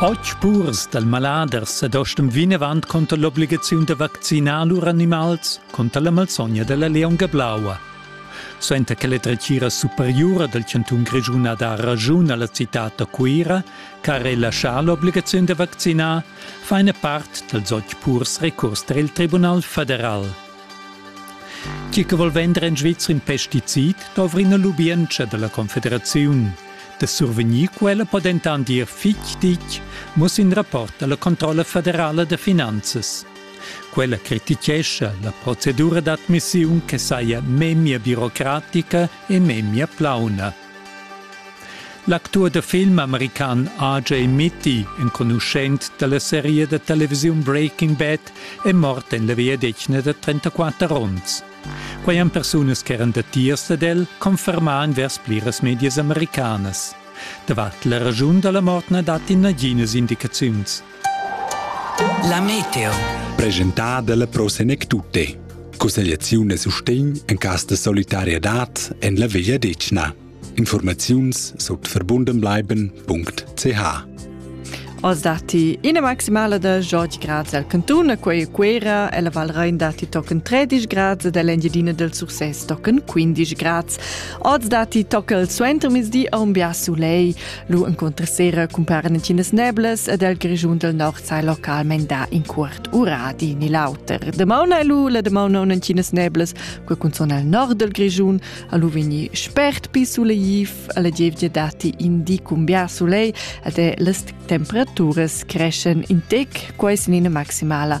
Otg purs dal malader sa dostem vinavant conter l'obligaziun da vaccinar lur animals conter la malsogna della leonga blaua. Suenter che la dretgira superiura del cantun Grischun ha dà ragiun alla citad da Cuira, che ha relaschà l'obligaziun da vaccinar, fa ina part dals otg purs recurs tar il Tribunal federal. Chi che vol vender in Svizra in pesticid dovrina lubientscha dalla Confederaziun. Da survegnir quella po dentant dir fitg ditg, muss in rapport alla Controlla federala da finanzas. Quella critichescha la procedura d'admissiun che saja memia birocratica e memia plauna. L'actur da film american RJ Mitty, enconuschent dalla seria da televisiun Breaking Bad, è mort en la vegliadetgna da 34 onns. Quei han persunas che eran datiers ad el confermà vers pliras medias americanas. Davart la ragiun dalla mort na dat naghinas indicaziuns. La meteo. Presentà dalla Pro Senectute. Cussegliaziun e sustegn en cas de solidarietad en la Veglia Decna. Informaziuns sut verbundenbleiben.ch Oz datti ina maximala da 8 grads al cantun, quei Cuera, e la Val Rein datti tochen 13 grads ed l'Engiadina del Sursès tochen 15 grads. Oz datti toccel suenter mezdi a un bia sulei. Lu enconter sera cumparan entinas neblas ed el grischun del nord sai localmein da in cuort ura di ni l'auter. De mauna lu la de mauna un entinas neblas, que cunzon al nord del grischun, a lu vegni spert pi suleiv, alla gievgia dati in di cumbiar sulei ed è las temperaturas creschen in tec, quai sin ina maximala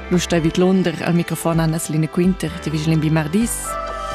Lu stai vidlunder al microfon Anna Selina Quinter, ti vigilin bi mardis.